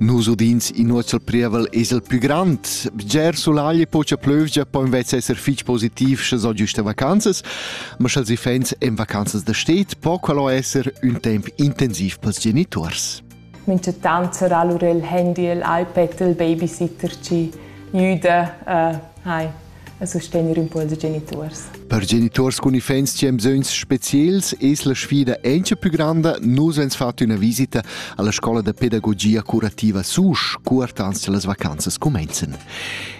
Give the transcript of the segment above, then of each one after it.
Nus udins in nuotsal prievel es el plü grand. Bger sulagl pocha plövgia po invece esser fich positiv sche s'ho giüsta vacanzas, ma scha'ls iffaints en vacanzas da sted po quello esser ün temp intensiv pels genituors. Minchatant sarà lur il handy, il iPad, il babysitter chi güda. Uh, hai. e sustegner un po ils geniturs. Per geniturs cun iffaints chi han bisögns speciels es la sfida encha più granda. Nus hans fat üna visita alla scola da pedagogia curativa Susch, cur ans las vacanzas cumenzan.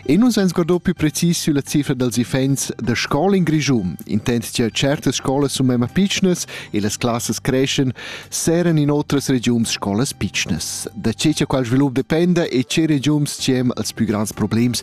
E nus hans guardò più precis sülla cifra dals iffaints da scola in Grischun. Intent cha certas scolas sun memma pitschnas e las classas creschan, seran in otras regiuns scolas pitschnas. Da che cha qual svilup dependa e che regiuns ci hem als più grands problems,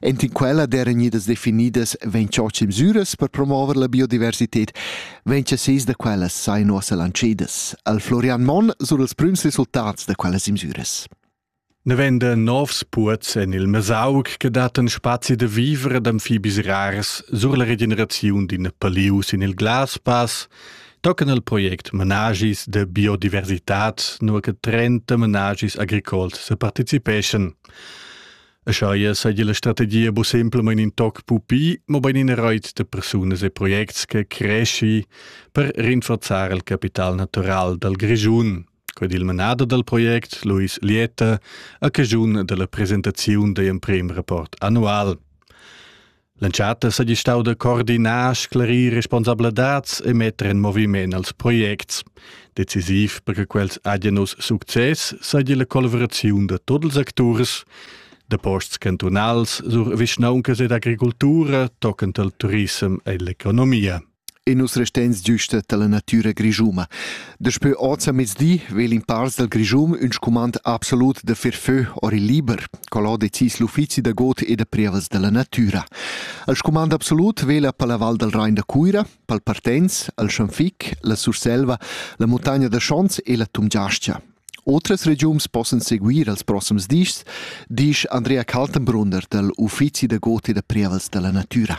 Enten quella d'eran gnidas definidas vegn tschotsch mesüras per promover la biodiversität. Vegn che seis da quellas sain uossa lancedas. Al Florian Monn sur els prüms resultats da quellas mesüras. Ne vende novs puots en il Mesaug che daten spazi de vivere d'amfibis rars sur la regeneraziun d'in palius in il Glaspass, tocan il project Menagis de biodiversità nur che 30 menagis agricols se participeschan. E schaia saja la strategia bu semplamain in toc pupi, mobain ina rait da persunas e projects che cresci per rinforzar il capital natural dal Grischun. Qued il manader dal project, Luis Lieta, a cajun della presentaziun da emprem rapport annual. L'entschatta seigi stau da coordinar, sclarir responsabladats e metter en moviment als projects. Decisiv per che quels agian uss success seigi la collaboraziun da tots ils acturs, da posts cantunals sur vischnauncas ed agricultura, toccant al turissem e l'economia. e nus restens giusta dalla natüra grischuma. Daspö oz a mezdi vegl in pars dal Grischum ün scumand absolut da fer fö or il liber, col ho decis l'uffizi da god e da prievas dalla natüra. Al scumand absolut vegl per la Val dal Rain da Cuira, pel Partenz, al Schanfic, la Surselva, la Montagna da Schons e la Tumgiastia. Otras regiuns possan seguir als prossims dis, disch Andrea Kaltenbrunner dal Uffizi da god e da prievas dalla natüra.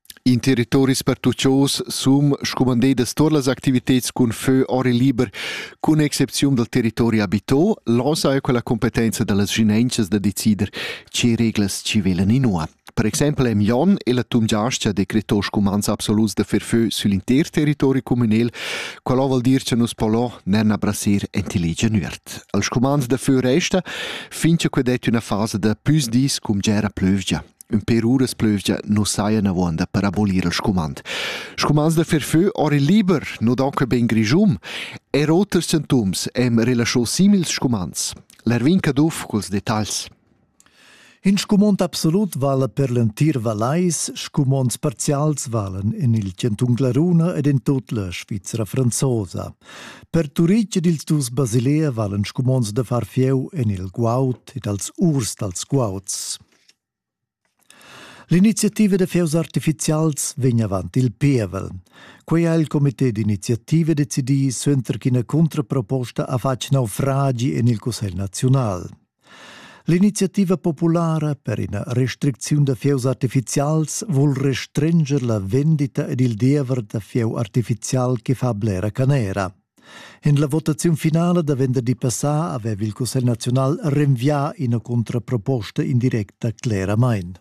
In territoris pertuchos sun scumandedas tuot las activitads cun fö or e liber, cun excepziun dal territori abito. Là saja quella competenza da las vschinaunchas da decider che reglas chi velan inua. Per exempel am Jon e la Tumgiascha decreto scumands absoluts da fer fö sül inter territori cumünel. Quella voul dir cha nus po là nen abrasir entilegia nuert. Als scumands da fö resta, fin cha que det üna fasa da püs dis cum gera plövgia. Ün pêr uras plüvgia nu sajan avuonda per abolir il scumand. Scumands da fer fö ora il liber nu don que ben grischun e oters sintoms hem relascho simils scumands. L'Erwin Caduff culs detagls. In scumond absolut vala per l'entir Vallais, scumonds parzials valen in il Canton Glaruna ed in tut la Svizzera franzosa. Per Turitg ed ils dus Basilea valen scumonds da far fieu en il guaut ed als urs dals guauds. L'iniziativa da fieus artificials vegn avant il pievel. Quei ha il comité d'iniziativa decidì suenter ch'ina contraproposta ha fatg naufragi en il Cussegl naziunal. L'iniziativa populara per ina restricziun da fieus artificials vul restrenger la vendita ed il diever da fieu artificial che fa blera canera. En la votaziun finala da venderdi passà aveva il Cussegl naziunal renvià ina contraproposta indirecta cleramain.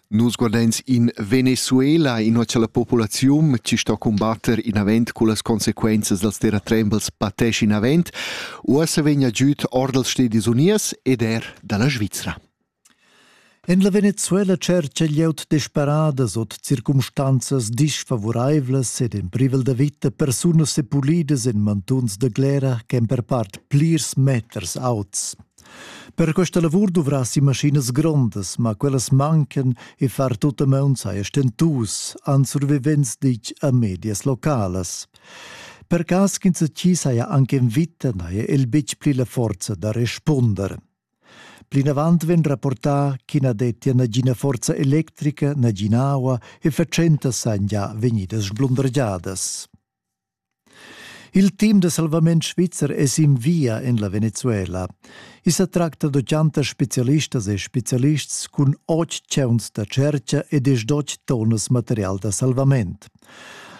Nus guardains in Venezuela, inua cha la populaziun chi sto combatter inavent cu las consequenzas dals terratrembels patesci inavent, uossa vegna giüt or dals Stedis Uniers ed er da la Svizra. En la Venezuela tschercha glieud desperadas ord circumstanzas disfavuraivlas ed en privel da vita persunas sepulidas en mantuns da glera ch'èn per part plirs meters auts. Per questa lavur duvrassi maschinas grondas, ma quellas mancan e far tut a maun saja stentus, han survivents ditg a medias localas. Per cas ch'insatgi saja anche en vita, n'haja el betg pli la forza da respunder. Plinavant vegn rapportà ch'i na dettia nagina forza electrica, nagina aua e fatschentas sajan gia vegnidas sblundergiadas. Il team da salvament svizzer è sin via en la Venezuela. I sa tracta da chantas spezialistas e spezialists cun otg tscheuns da tschertga ed es dotg tonnas material da salvament.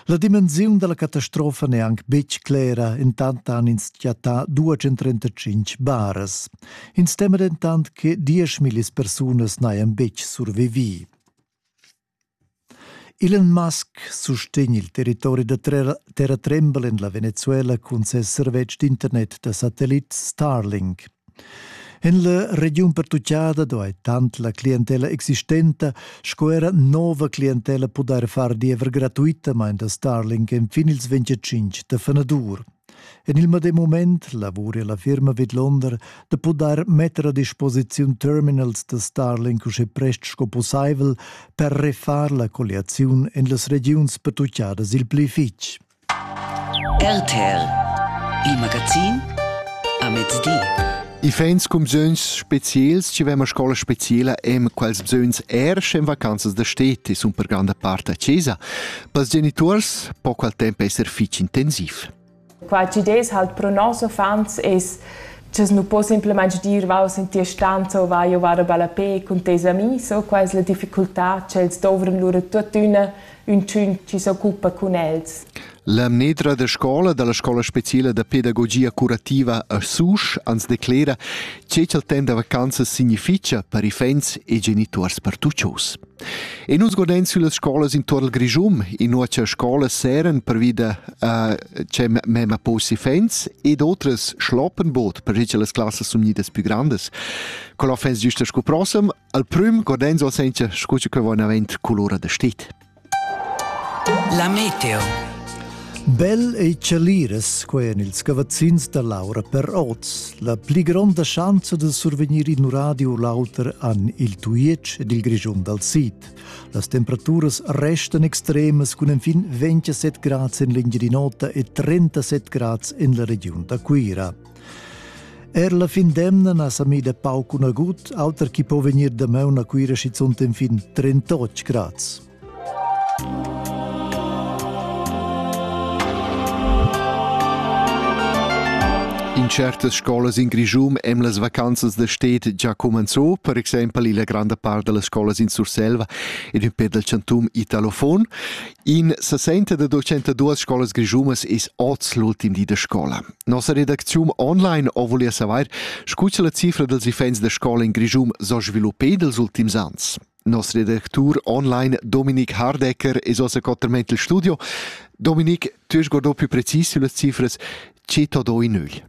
La dimensiun dalla catastrofa n'è anc betg clera, entant han ins chattà 235 baras. Ins tema dentant che 10.000 persunas n'hajan betg survivì. Elon Musk sustegn il territori da terratrembel en la Venezuela cun ses servetsch d'internet da satellit Starlink. En la regiun pertuccada duai tant la clientela existenta sco era nova clientela pudair far diever gratuitamain da Starlink enfin ils 25 da fenadur. En il medem moment lavura la firma vidlonder da pudair metter a disposiziun terminals da Starlink usche prest sco pussaivel per refar la colliaziun en las regiuns pertuccadas il pli fitg. RTL Il magazin a mezdi. I feins cumsögns speziels, ci vema scola speciela em quals bsögns er schen vacanzas da steti sun per granda part a Cesa. Pels genituors po qual temp esser fich intensiv. Qua ci des halt pro nos uffants es Ches nu po simplamaing dir vau sentir stanza o vai o var a ballapè cun tes amis o quai es la difficultà ch'els dovran lura tuottüna Üntün chi s'occupa cun els. La mnedra da scola dalla scola speciala da pedagogia curativa a Susch ans declera che ch'el temps da vacanzas significha per i fegns e genituors pertuchos. E nus godain süllas scolas intuorn il Grischum, inua cha scolas seren pervi da uh, che mema posi fens ed otras schloppenbot per che las classas sun gnidas più grandes. Col offens giusta scu prossem Al prüm Cordenso senza scu che va avent colora da stit. La meteo. Bel ei celiras quei en ils cavazzins da Laura per oz. La pli gronda schanza de survegnir in radio lauter an il Tuiec ed il Grigion dal Sid. Las temperaturas restan extremas cun enfin 27 grads en l'Engirinota e 37 grads en la regiun da Cuira. Er la fin d'emna na sa mida pauc cun agut, auter chi po vegnir damaun a Cuira schizunt en fin 38 grads. In certas scolas in Grischum em las vacanzas da stet già comenzò, per exempel la granda part delle scuole in Surselva ed un peu del chantum italofon. In sesenta da ducentaduas scolas grischunas es oz l'ultim di da scola. Nossa redacziun online o voglia savair, scu cha la cifra dals iffaints da scola in Grischun s'ho sviluppà dels ultims ans. Nos redactur online Dominik Hardecker es ossa coterment il studio. Dominik, tu hast guardà più precis sulle cifras, che t'ho do in nügl?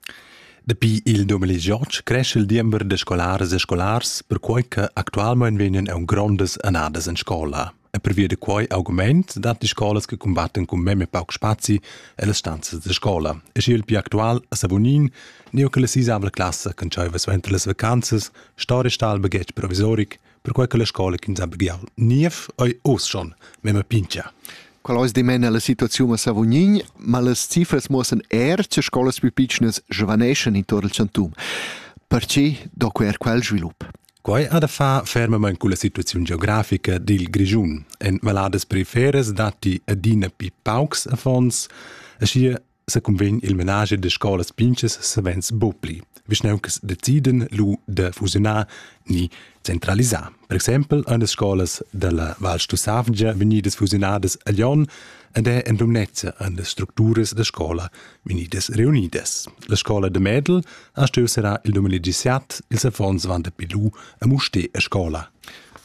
Dapi il 2018 cresce il diember da scolares e scolars, perquai che actualmain vegnan aun grondas annadas in scola. E pervia da quai augment datti scolas che cumbattan cun memia pauc spazi e stanzas da scola. E sche il più actual a Savonin, neu che la sisavla classa che dschaiva suenter las vacanzas sta restal baghetg provisoric, perquai che la scola che sa begiau niev ei oz schon memma pincha. Qual ois dimena la situaziun a Savognin, ma las cifras muossen er che scolas più piccines svaneschan intorno al chantum. Perché do quer quel svilup? Quai ha da far fermamain culla situaziun geografica dil Grischun. En valadas periferes datti adina pli paucs affons, aschia se convegn il menage de scolas pinches savens bopli, vischnauncas deciden lu de fusionar ni centralisar. Per exempel ein las scolas dalla Val Stussavgia vegnidas fusionadas a Lyon ed è en Lumnezia an las structuras da scola Venides reunides. La scola de Medel ha stuiu serrar il 2017 ils affons van de Pilou a Muste a scola.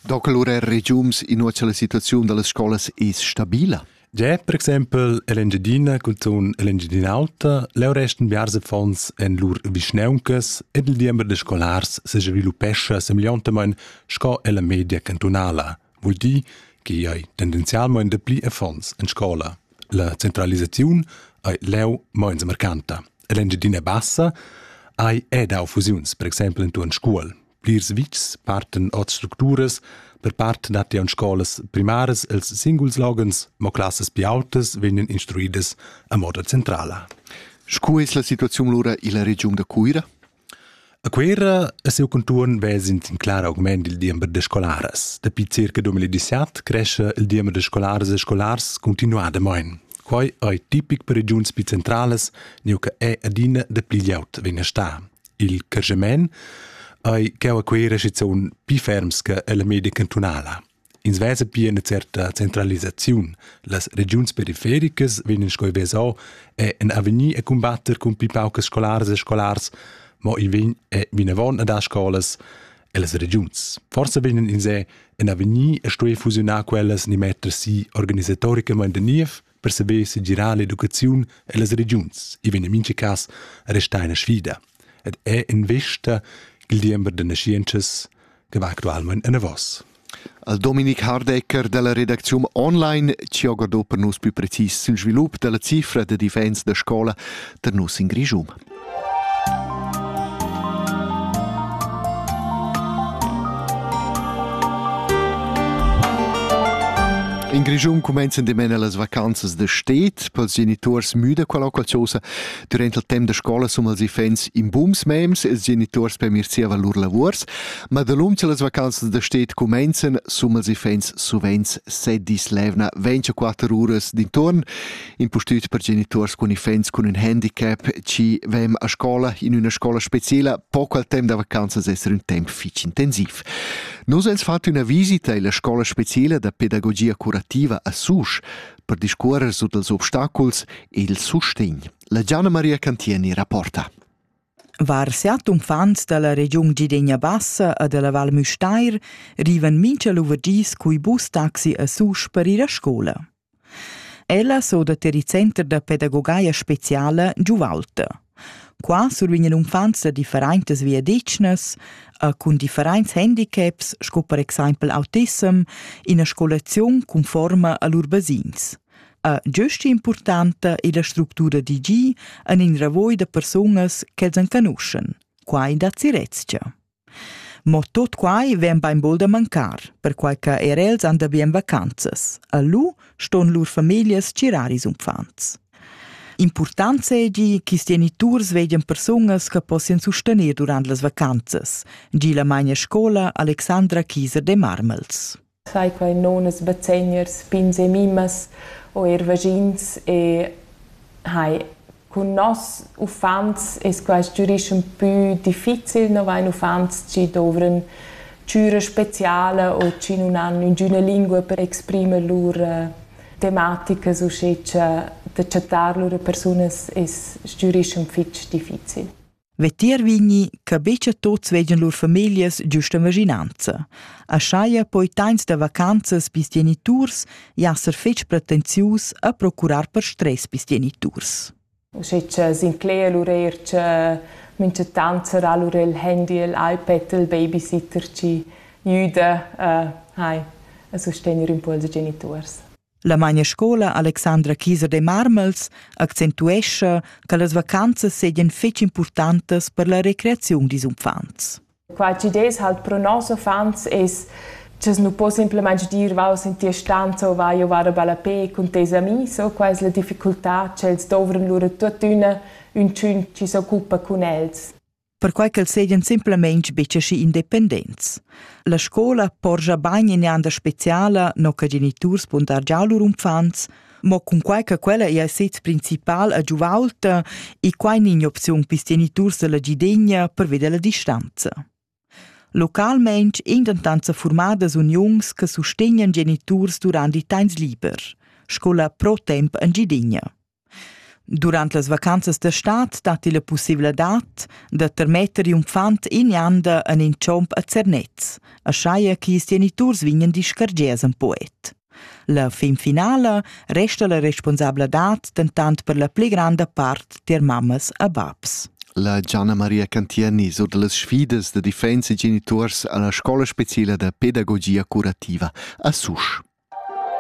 Donc allora il regiums in uocha la situaziun dallas scolas es stabila? Già, per exempel, l'Engiadina cunzun l'Engiadin'Alta leu resten biars affons en lur vischneuncas ed il diember de scolars se sviluppescha semegliontamain sco ella media cantunala. vul dir che ei tendenzialmein dapli affons en scola. La centralisaziun ei leu meins mercanta. L'Engiadina Bassa ei eda fusiuns, per exempel in tuan scuol. Plirs vitgs parten od structuras, per part dat ja scolas primaras els singuls logens, mo classas più autas vegnan instruidas a moda centrala. Sco es la situaziun lura illa regiun da Cuira? A Cuera e siu contuorn vez'ins in clar augment dil diember da scolaras. Dapi circa 2017 crescha il diember da scolaras e scolars continuadamein. Quei ei tipic per regiuns pli centralas, neu che ei adina dapli glieud vegn a star. Il crescement ei cheu a Cuera schizun pli ferms che ella media cantunala. Ins vesa pia ina certa centralisaziun. Las regiuns perifericas vegnan sco vesau e en avegnir a cumbatter cun pli paucas scolaras e scolars, mo i vegn e vinavon ad dar scolas ellas regiuns. Forsa vegnan ins en avegnir a stuer fusiunar quellas ni metter si organisatoricamain da niev, per saber segirar l'educaziun e las regiuns, i vegn en mincha cas a restar ina sfida ed è in vista il diember da nascientschas che va actualmente en avos. Al Dominik Hardecker dalla redacziun online ci ho guardò per nus più precis sul svilup della cifra de difensa da scola ter nus in Grischum. In Grischun cumenzan dimena las vacanzas da stet pels geniturs müda quella occaziosa durant il temp da scola sum els ifens in bums mems els geniturs per mir sia valur lavurs, ma dalum che las vacanzas da stet cumenzan sum els ifens suvent se dis levna 24 uras d'intorn impustüt per genituors cun iffaints cun ün handicap, chi vem a scola in üna scola speciela, poco al temp da vacanzas esser ün temp fich intensiv. Nos ens fat üna visita illa scola speciela da pedagogia curativa a Susch per discuorrer su dals obstaculs e il sustegn. La Gianna Maria Cantieni rapporta. Var siat uffants dalla regiun Gidegna Bassa e dalla Val Müstair rivan mincha luverdis cui bus taxi a Susch per ir a scola. Ella s'odat er il center da pedagogaia speciala Giuvalta. Qua survegn l'uffants da differentas viadetgnas e cun differents handicaps sco per exempel autissem ina scolaziun conforma a lur basins. E giust importanta è la structura d'IG en in ravoi da persunas ch'els enconuschen. Quai da Zirezia. Mo tut quai vegn bainbod a mancar, perquai che er els han da bien vacanzas. A lu ston lur famiglias tgirar ils uffants. Impurtant seigi ch'is geniturs vegien persunas che possien sustener durant las vacanzas, gi la magna scola Alexandra Kieser de Marmels. Sai quai non es bazegners, pins e mimas o eir vagins e hai cun noss uffants es quaist giurischem pü difficil, no vain uffants chi dovran chüra speciala o chi nun han üngüna lingua per exprimer lur tematicas uschè cha da chattar lur persunas es giurischem fich difficil. Vetier vigni che betga tots vegien lur familias giusta vaginanza. A schaia poi tains da vacanzas pis geniturs jasser fetg pretensius a procurar per stress pis geniturs. Sche che Sinclair lur eir che minchatant sarà lur il handy, il iPad, il babysitter chi jüda uh, hai, a sustegnere impulso geniturs. La mainescola Alexandra Kieser de Marmels accentuescha che las vacanzas seigien fetg impurtantas per la recreaziun dils uffants. Qua tgi des halt pro nos uffants es che nu po semplamain dir vau in tia stanza o vai o vara bella pe cun tes amis o qua es la difficultà ch'els dovran lura tuttina ün tschun chi s'occupa cun els. perquai ch'els seigien simplamain betg aschi independents. La scola porscha bain in'anda speciala, no che geniturs pon dar già lur unfants, mo cunquai che quella ei a sez principal a giuvaulta e quai ni in'opziun per geniturs dalla gidegna per veder la distanza. Localmein ein dentant sa formadas uniuns che sustegnan geniturs durant i temps liber, sco la Pro Temp en Gidegna. Durant las vacanzas da stad datti la pussaivladad da termetter in uffant ignanda en in chomp a Zernez, aschia che ils geniturs vegnan discargiads en poet. La fin finala resta la responsabladad dentant per la pli granda part tier mammas e babs. La Gianna Maria Cantieni sur da las sfidas da difensa e geniturs a la scola speciala da pedagogia curativa a Susch.